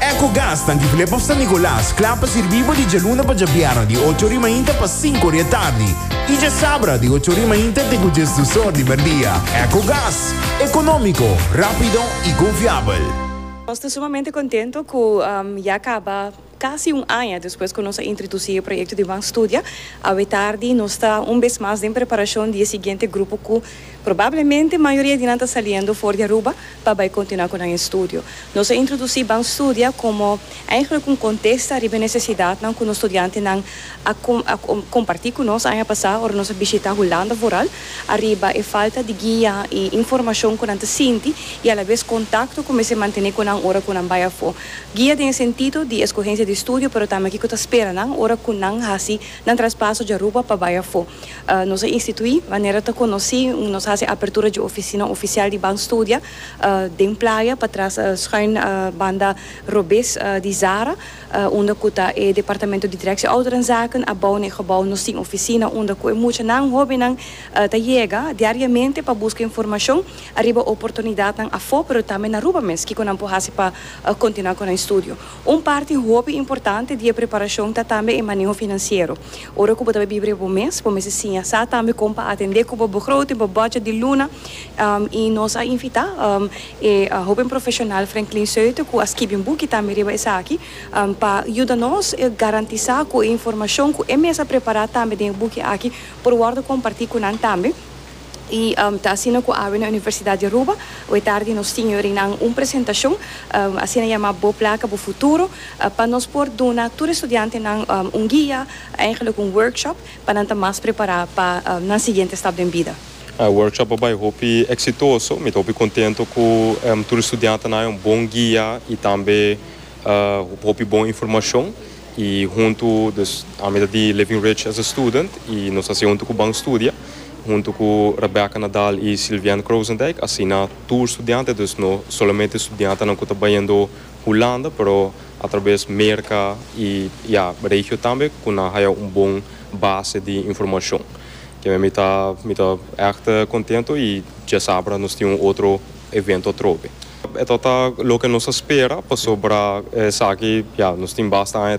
Ecogas ta Antigulé pa San Nicolas, kla pa sirbí bo di djaluna pa djabièrnè di ocho ori mainta pa sinku ori e tardi i djasabra di ocho ori mainta te ku djes dus or di merdia. Ecogas, ekonómiko, rápido i konfiabel. Nos ta sumamente kontento ku ya kaba kasi un aña despues ku nos a introdusí e proyekto di Ban Studia. Awe tardi nos ta un bes mas den preparashon di e siguiente grupo ku Probablemente mayoria di nan ta saliendo for di Aruba pa bai continua cu nan estudio. Nos a introduci Banstudia como eigenlijk un contesta riba e necesidadnan cu nos studiantenan a comparti cu nos aña pasa ora nos a bishita Hulanda vooral ariba e falta di guia y informacion cu nan ta sinti y alabes contacto cu mester mantene cu nan ora cu nan bai afo. Guia den e sentido di escogencia di estudio pero tambe kico ta spera nan ora cu nan haci nan traspaso di Aruba pa bai afo. Nos a instituí manera ta konosí unda nos hasi apertura dje ofisina ofisial di Ban Studia den Playa patras schuin banda robes di Zara unda ku ta e departamento di Directie Ouderenzaken a bou na e gebou. Nos tin ofisina unda ku e muchanan, hóbennan, ta yega diariamente pa buska informashon ariba oportunidatnan afó pero tambe na Aruba mes kiko nan por hasi pa kontinuá ku nan estudio. Un parti hopi importante di e preparashon ta tambe e maneho finansiero. Ora ku bo ta bai biblia bo mes, bo mester siña sa tambe kon pa atendé ku bo begroting, bo budget di luna. I nos a invitá e hoben profeshonal Franklin Suiter ku a skibi un buki tambe riba esaki pa yuda nos garantisá ku e informashon ku e mes a prepará tambe den e buki aki por wòrdu kompartí ku nan tambe. Y ta asina cu awe na Universidad di Aruba awe tardi nos tin yorinan un presentacion asina yama Bo Placa Bo Futuro pa nos por duna tur estudiantenan un guia, eigenlijk un workshop, pa nan ta mas prepara pa nan siguiente stap den bida. E workshop a bay hopi exitoso, mi ta hopi contento cu tur estudiantenan a haña un bon guia y tambe hopi bon informacion. Y hunto dus a mitad di Living Ridge as a student y nos a haci hunto cu ban studia. Hunto cu Rebecca Nadal y Sylviane Croosendijk asina tur studiante dus no solamente studiantenan cu ta bayendo Hulanda pero atraves Merca y ya regio tambe cu nan haya un bon base di informacion. Kimen mi ta mi ta echt contento y diasabra nos tin un otro evento atrobe. Eto ta loke nos a spera pasobra esaki ya nos tin basta aña.